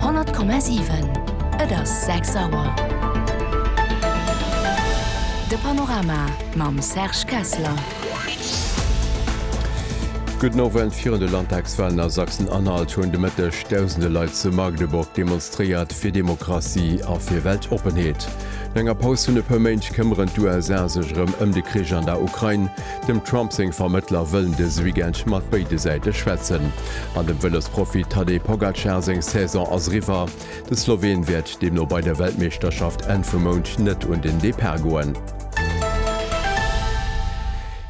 100,7. Et ass 6 Auer. De Panorama mam Serge Kessler. Gudden Owend. Virun de Landtagswalen a Sachsen-Anhalt hunn de Mëtteg dausende Leit zu Magdeburg demonstréiert fir Demokratie a fir Weltoppenheet. No enger Paus vun e puer Méint këmmeren d'USA sech erëm ëm de Krich an der Ukrain. Dem Trump seng Vermëttler wëllen dëse Weekend mat béide Säite schwätzen. An dem Vëlosprofi Tadej Pogacar seng Saison ass eriwwer. De Sloween wäert deemno bei der Weltmeeschterschaft Enn vum Mount net un den Depart goen.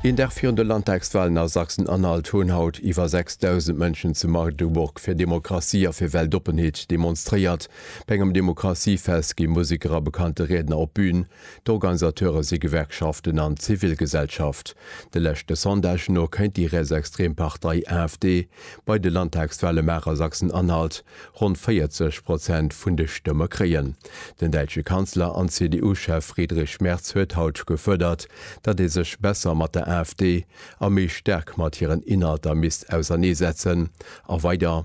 Een Dag virun de Landtagswalen a Sachsen-Anhalt hunn haut iwwer 6.000 Mënschen zu Magdeburg fir Demokratie a fir Weltoppenheet demonstréiert. Bei engem Demokratiefest gi Museker a bekannte Riedner op d'Bün. D'Organisateure si Gewerkschaften an d'Zivilgesellschaft. De leschte Sondagen no kéint déi rietsextrem Partei AfD bei de Landtagswale Maach a Sachsen-Anhalt ronn 40 Prozent vun de Stëmme kréien. Den däitsche Kanzler an CDU-Chef Friedrich Merz huet haut gefuerdert, datt ee sech besser mat der AfD a méi staark mat hiren Inhalter misst auserneesetzen a weider,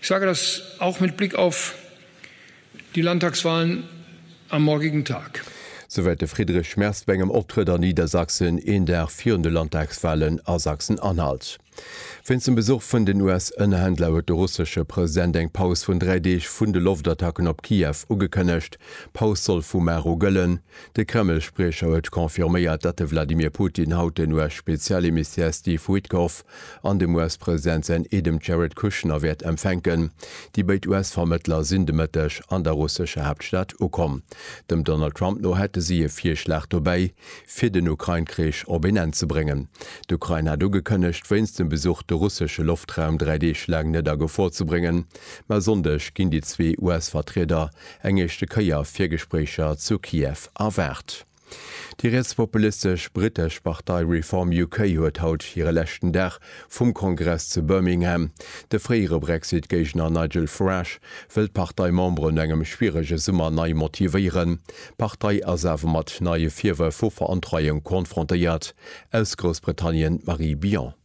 Ich sage das auch mit Blick auf die Landtagswahlen am morgigen Tag. Souwäit de Friedrich Merz bei engem Optrëtt an Niedersachsen, een Dag virun de Landtagswahlen a Sachsen-Anhalt. Wéinst dem Besuch vun den US-Ënnerhändler huet de russesche President eng Paus vun dräi Deeg vun de Loftattacken op Kiew ugekënnegt. D'Paus soll vu mar u gëllen. De Kreml-Spriecher huet confirméiert, datt de Wladimir Putin haut den US-Spezialemissär Steve Witkoff an dem US-President säin Eedem d'Jared Kushner wäert empfänken. Déi béid US-Vermëttler sinn de Mëtteg an der russescher Haaptstad ukomm. Dem Donald Trump no hätte si e Virschlag dobäi, fir den Ukrain-Krich op een Enn ze bréngen. D'Ukrain hat ugekënnegt, wéinst dem Besuch de russesche Loftraum dräi Deeg laang net a Gefor ze bréngen. Mä e Sonndeg ginn déi zwee US-Vertrieder eng éischte Kéier fir Gespréicher zu Kiew erwaart. Déi rietspopulistesch brittesch Partei Reform UK huet haut hire leschten Dag vum Kongress zu Birmingham. De fréiere Brexit-Géigner Nigel Farage wëll d'Parteimembere no engem schwierege Summer nei motivéieren. D'Partei ass awer mat neie Virwërf vu Verontreiung konfrontéiert. Aus Groussbritannien d'Marie Billon.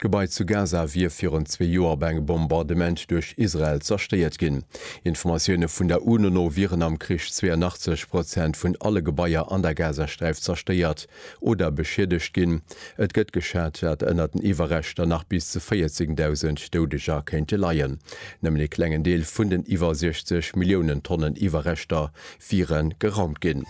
D'Gebai zu Gaza wier virun zwee Joer bei engem Bombardement duerch Israel zerstéiert ginn. Informatioune vun der UNO no wieren am Krich 82 Prozent vun alle Gebaier an der Gazasträif zerstéiert oder beschiedegt ginn. Et gëtt geschat, dat ënner den Iwwerreschter nach bis zu 14.000 Doudeger kéinte leien. Nëmmen ee klengen Deel vun den iwwer 60 Milliounen Tonnen Iwwerreschter wiere geraumt ginn.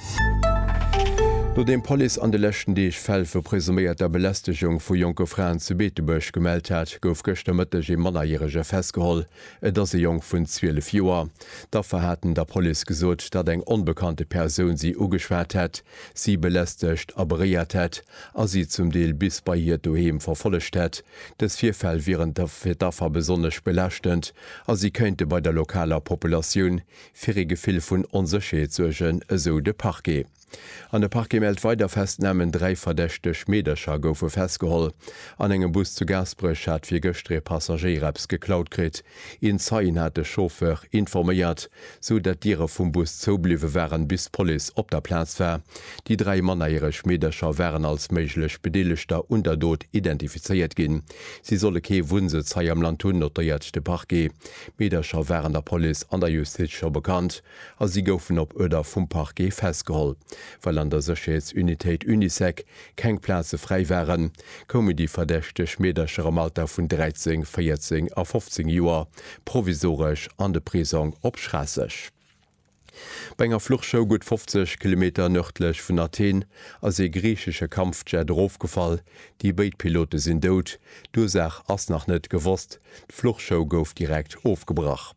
Nodeem d'Police an de leschten Deeg Fäll vu presuméierter Belästegung vu jonke Fraen zu Beetebuerg gemellt hat, gouf gëschter Mëtteg ee Mannerjärege festgeholl. Et ass e Jong vun 12 Joer. D'Affer haten der Police gesot, datt eng onbekannte Persoun si ugeschwat hätt, si belästegt a beréiert hätt a si zum Deel bis bei hiert Doheem verfollegt hätt. Dës Virfäll wieren fir d'Affer besonnesch belaaschtend a si kéinte bei der lokaler Populatioun fir ee Gefill vun Onsécherheet suergen, esou de Parquet. An de Parquet mellt weider Festnamen, Dräi verdächteg Meedercher goufe festgeholl. An engem Bus zu Gaasperech hat fir gëschter ee Passagéier eppes geklaut kritt. Een Zeien hat de Chauffeur informéiert, esou datt d'Diere vum Bus zoubliwwe waren, bis d'Police op der Plaz war. Déi dräi mannerjäreg Meedercher waren als méiglech Bedeelegter un der Dot identifizéiert ginn. Si solle kee Wunnsëtz hei am Land hunn, notéiert de Parquet. D'Meedercher waren der Police an der Justiz scho bekannt a si goufen op Uerder vum Parquet festgeholl. Well an der Sécherheetsunitéit Unisec keng Plaze fräi waren, koumen déi verdächteg Meedercher am Alter vun 13, 14 a 15 Joer provisoresch an de Prisong op Schraasseg. Bei enger Fluchshow gutt 50 Kilometer nërdlech vun Athen ass ee griichesche Kampfjet erofgefall. Déi béid Pilote sinn dout. D'Ursaach ass nach net gewosst. D'Fluchshow gouf direkt ofgebrach.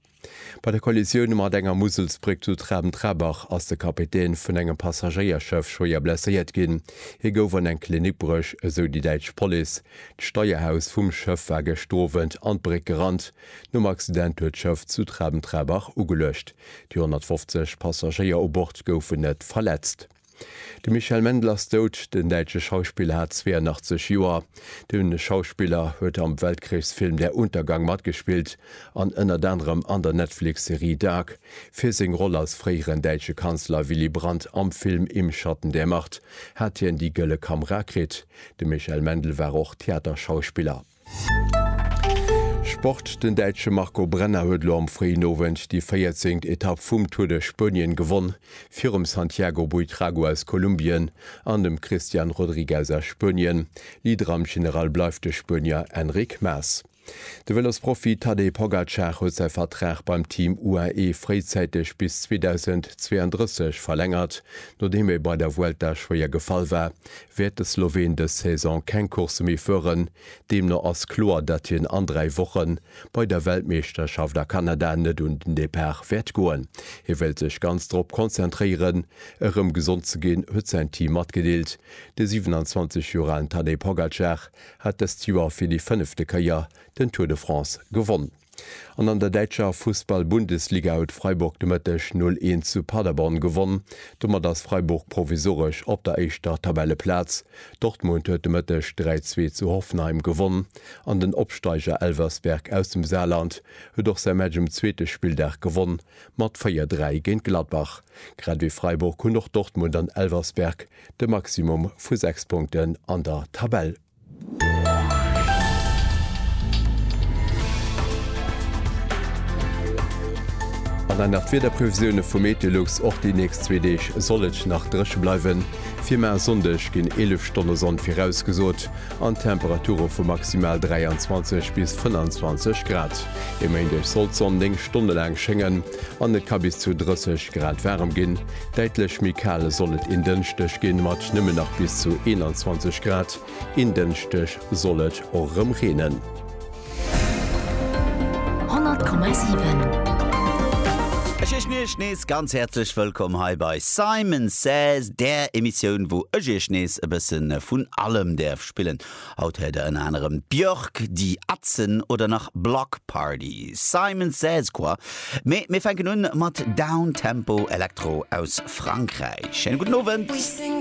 Bei der Kollisioun mat enger Muselsbréck zu Traben-Trarbach ass de Kapitän vun engem Passagéierschëff schwéier blesséiert ginn. Hie gouf an eng Klinik bruecht, esou déi däitsch Police. D'Steierhaus vum Schëff war gëscht Owend an d'Bréck gerannt. Nom Accident huet d'Schëff zu Traben-Trarbach ugeluecht. Déi 150 Passagéier u Bord goufen net verletzt. De Michel Mendl ass dout. Den däitsche Schauspiller hat 82 Joer. De Schauspiller huet am Weltkrichsfilm Der Untergang matgespillt an ënnert anerem an der Netflix-Serie Dark fir seng Roll als fréieren däitsche Kanzler Willy Brandt am Film Im Schatten der Macht hat hien déi Gëlle Kamera kritt. De Michel Mendl war och Theaterschauspiller. Sport, Den Däitsche Marco Brenner huet elo am fréien Owend déi 14. Etapp vum Tour de Spuenien gewonn, virum Santiago Buitrago aus Kolumbien an dem Christian Rodriguez aus Spuenien. Leader am General bleift de Spuenier Enric Mas. De Vëlosprofi Tadej Pogacar huet säi Vertrag beim Team UAE fréizäiteg bis 2032 verlängert, nodeem e bei der Vuelta schwéier gefall war, wäert de Sloween dës Saison keng Coursse méi fueren. Deemno ass kloer, datt hien an dräi Woche bei der Weltmeeschterschaft a Kanada net un den Depart wäert goen. Hie wéilt sech ganz drop konzentréieren, erëm gesond ze ginn, huet säin Team matgedeelt. De 27 Joer alen Tadej Pogacar hat dëst Joer fir déi fënnefte Kéier den Tour de France gewonn. An an der däitscher Fussball-Bundesliga huet Freiburg de Mëtteg 0, 1 zu Paderborn gewonn. Domat ass Freiburg provisoresch op der éischter Tabelleplaz. Dortmund huet de Mëtteg 3, 2 zu Hoffenheim gewonn an den Opsteiger Elversberg aus dem Saarland huet och säi Match um zweete Spilldag gewonn mat 4, 3 géint Gladbach. Grad ewéi Freiburg hunn och Dortmund an Elversberg de Maximum vu 6 Punkten an der Tabell. An dann nach d'Wiederprevisioune vu Meteolux, Och déi nächst zwee Deeg soll et nach dréche bleiwen. Firma e Sonndeg ginn 11 Stonne Sonn virausgesot an Temperature vu maximal 23 bis 25 Grad. E Méindeg soll d'Sonn 9 Stonne laang schéngen an et ka bis zu 30 Grad waarem ginn. Däitlech méi kal soll et een Dënschdeg ginn, mat nëmmen nach bis zu 21 Grad. Een Dënschdeg soll et och erëm reenen. 100,7. Ech heeschen Iech nees ganz häerzlech wëllkomm hei bei Simon Says, där Emissioun, wou ech Iech nees e bësse vun allem däerf spillen. Haut héiert der ënner anerem Björk, Die Atzen oder nach Bloc Party, Simon Says Quoi. Mee mir fänken un mat Downtempo Electro aus Frankräich. Schéine gudden Owend.